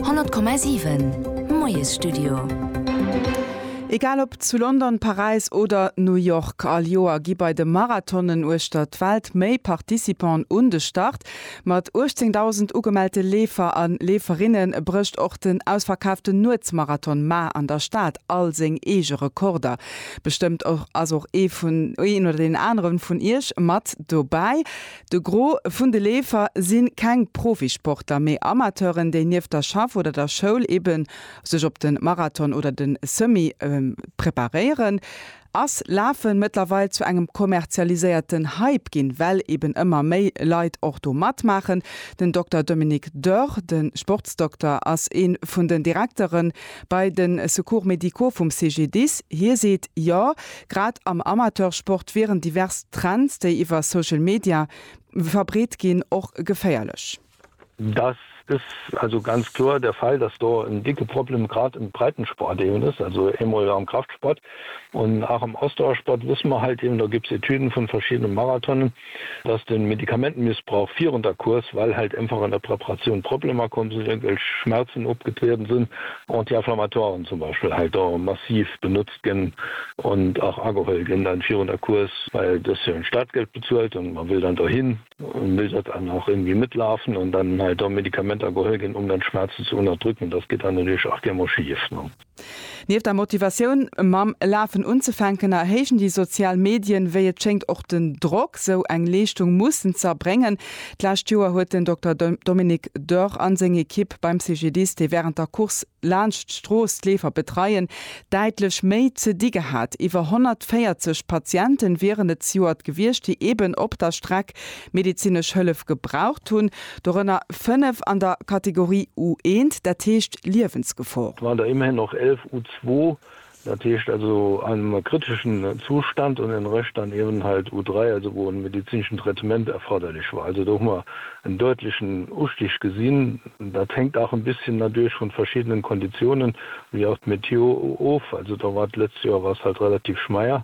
100,7 Moiesstudio. Egal ob zu London, Paräis oder New York, all Joer gi bei de Marathonen uechter d'Welt méi Participanten un de Start. Mat 18.000 ugemellte Leefer a Leeferinne brécht och den ausverkaaften Nuetsmarathon mar an der Stad all seng eege Rekorder. Bestëmmt ass och een oder deen anere vun Iech mat dobäi. De Gros vun de Leefer si keng Profisportler, mee Amateuren, déi nieft der Schaff oder der Schoul ebe sech op de Marathon oder de Semi preparéieren. Ass Lafen mëttlerweil zu engem kommerzialiséierten Hype ginn, well eben ëmmer méi Leit och do matmaachen? Den Dokter Dominique Dörr, de Sportsdokter, ass ee vun den Direkteren Bei de Secours médicaux vum CGDIS, hie seet, jo, grad am Amateursport wieren divers Trends, déi iwwer Social Media verbreet ginn, och geféierlech. Dass is also ganz kloer der Fall, dass do en dicke Problem grad im Breitensport eben is, also eemol am Kraftsport, Und auch im Ausdauersport wüss mer halt eben, do gibs Etüden vun verschiedene Marathonen, dass den Medikamentenmissbrauch virun der Course, well halt einfach an der Preparatioun Problemer komm sin, irgendwelch Schmerzen opgetrieden sin, Anti-inflammatoiren zum Beispiel halt do massiv benutzt gin und auch ageholl gin dann virun der Course, well du hues jo en Startgeld bezuelt und mer will dann dohin und will dat dann auch irgendwie mitlaufen und dann halt do Medikamenter geholl gin, um dann Schmerzen ze unterdrücken, das geht dann natürlich auch gär mol schief. Nieft der Motivatioun, mam Lafen unzefänken, erhéijen déi sozial Medien, wéi et schéngt, och den Drock, sou eng Leeschtung mussen z'erbréngen. D'lescht Joer huet den Dokter Dominique Dörr a seng Ekipp beim CGDIS, déi wärend der Course laanscht d'Strooss d'Leefer betreien, däitlech méi ze di gehat. Iwwer 140 Patiente wieren et zejoert gewiescht, déi eeben op der Streck medezinesch Hëllef gebraucht hunn, dorënner fënnef an der Kategorie U1, dat heescht Liewensgefor. Mä der immerhin och elf U2, dat heescht also am kriteschen Zustand, an den Rëscht dann eben halt U3, also wou e medezineschen Traitement erforderlech war. Also do hu mer en däutlechen Ustig gesinn. Dat hänkt auch en bisschen natierlech vun verschiddenen Konditionen, wéi auch d'Météo, of. Also do war d'lëtzt Joer war es halt relativ schmeier.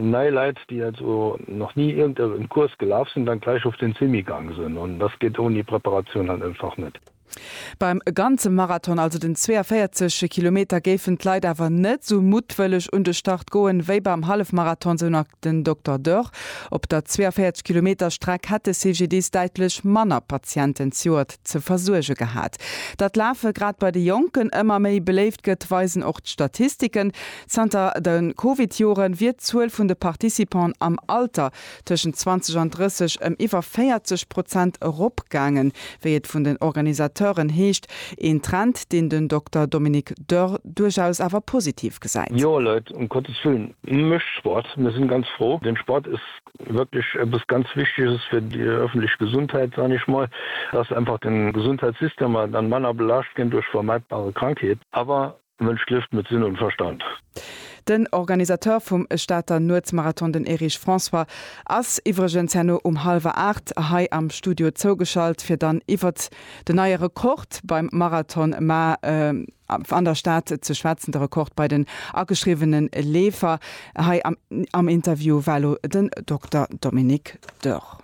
Nei Leit, déi also nach ni irgend e Kurs gelaf sinn, dann gläich of den Semi gang sen. Und das geet oni Preparatioun halt einfach net. Beim ganze Marathon, also den 42 Kilometer, géifen d'Leit awer net sou muttwëlleg un de Start goen, wéi beim Hallefmarathon, sou nach den Dokter Dörr. Op der 42 Kilometer Streck hätt de CGDIS däitlech manner Patienten d'Joert ze versuerge gehat. Datt Lafe grad bei de Jonken ëmmer méi beléift gëtt, weisen och d'Statistiken. Zanter de Covid-Joren wier d'Zuel vun de Participanten am Alter tëschent 20 an 30 ëm iwwer 40 Prozent eropgaangen, wéi et vun den Organisateuren heescht. Een Trend, deen den Dokter Dominique Dörr duerchaus awer positiv gesäit. Jo Leit um Côté Swim, mécht Sport, mir sinn ganz fro. Den Sport ass wierklech eppes ganz Wichtiges fir déi öffentlech Gesundheit, soen ech mol, dass einfach den Gesundheitssystem dann manner belaascht ginn duerch vermeidbare Krankheeten. Awer Mënsch lieft mat Sinn an Verstand. Den Organisateur vum Stater Nuetsmarathon, den Erich François, ass iwwregens herno um hallwer 8 hei am Studio zougeschalt, fir dann iwwert den neie Rekord beim Marathon ma an der Stad ze schwätzen, de Rekord bei den ageschriwwene Leefer. Hei am Interview war elo den Dokter Dominique Dörr.